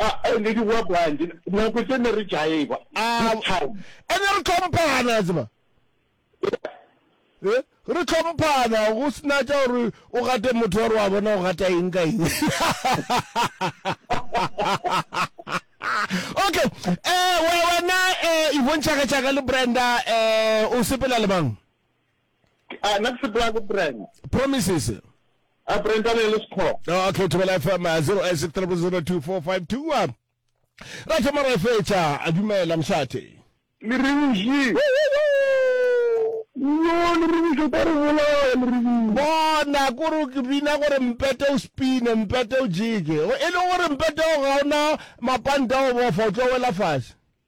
A ne di hwa bwanji nako tše ne re jaiva a town. E ne re tlhomphana ya tseba. Eh, re tlhomphana go sena tša gore o gate motho wa re wa bona o gata eng ka eng. Okay, eh wena eh Yvonne Chaka Chaka le Brenda eh o sepela le mang? Ah, na ke sepela ko Brand. Promises. A Brand a le le sekho. Ah, okay, Thobela FM 0863002452. Ra ke mara fetša a dumela mshate. Le re ushi. Yo le re ushi ka re bola le re ushi. Bona gore ke bina gore mpete o spine, mpete o jike. E le gore mpete o ga ona mapanta o bofa o tlo wela fase.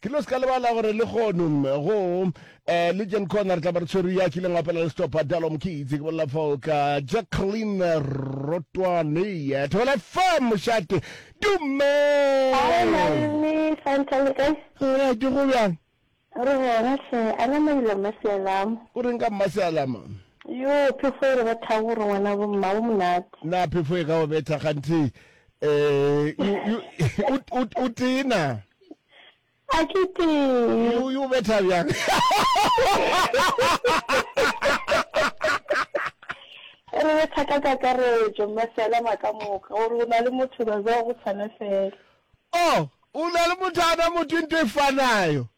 Ke no se ka lebala gore le gono go eh, le Jen Corner tla ba re tshwere ya kileng apela le stopa Dalo Mokitsi ke bolela fao ka Jacqueline Rotwane eh, Thobela FM mošate dume Hi, Malome, fine, tell me, guys. Eh, ke go bjang Re gona hle, a na mailo mma sealam. o reng ka mma sealama Yo, phefo e re bethago gore ngwana bo mma bo monate. na phefo e ka go betha ganthe eh o tena a ke tee o yo betha bjang re betha ka kakaretso mme fela maka moka gore o na le motho ba ba go tshwana fela oh o na le motho ana motho into e fanayo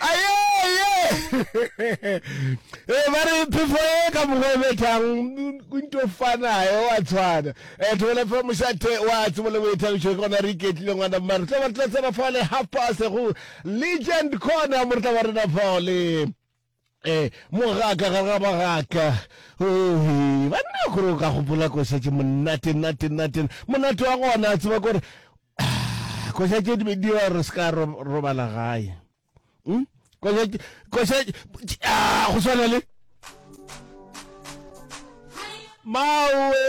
ayeye e ba re phefo e ka mokgwa o bethang kunto fanae wa tshwana e thobele fa mošate wa tsebo le boithabišo ke gona re iketlile ngwana mma re tla ba re tla tsena fao le half past go legend corner mo re tla ba rena fao le eh mogaka ga ga bagaka ohe banna gore o ka gopola ko šetse monate nate nate monate wa gona tseba kore koša tše di dira gore se ka robala gae hmm? koša ah, go swana le mawe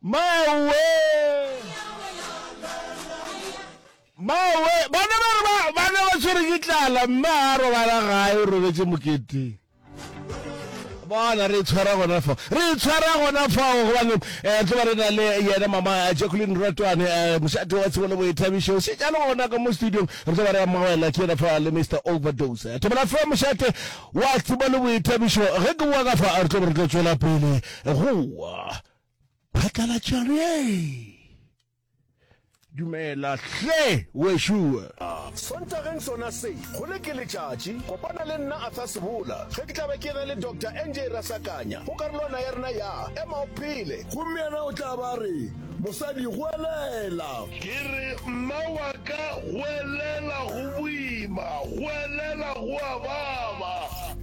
mawe mawe bana ba re bana ba tshwere ke tlala mme a robala gae o robetse moketeng bona re itshwara gona fa re itshwara gona fao gobane um eh, tloba re na le yena mama eh, jacqueline ratwane um eh, mošate wa tshebolo boithabišo se jalo gona ka mo studiong re tloba re amogela ke yena fa le mr overdose thobela fe mošate wa tshebolo boithabišo ge ke boa ka fa re tloba re tlo tswela pele goa phatlalatšano ye Dumela hle wešoo. A Sontageng sona se, go le ke letšatši, kopana le nna Arthur Sebola ge ke tla be ke na le Doctor NJ Rasakanya go karolwana ya rena ya Ema o Phele. Gomme yena o tla ba a re, Mosadi, goelela! Ke re, Mma wa ka, goelela! Go boima. Goelela go a baba.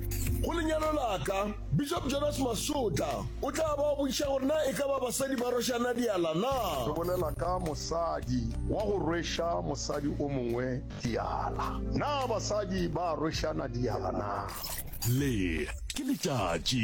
Go lenyalo la ka. Bishop Jonas Masotla o tla ba o botšiša gore na e ka ba basadi ba rwešana diala na. Re bolela ka mosadi wa go rweša mosadi o mongwe diala. Na basadi ba a rwešana diala na? Le ke letšatši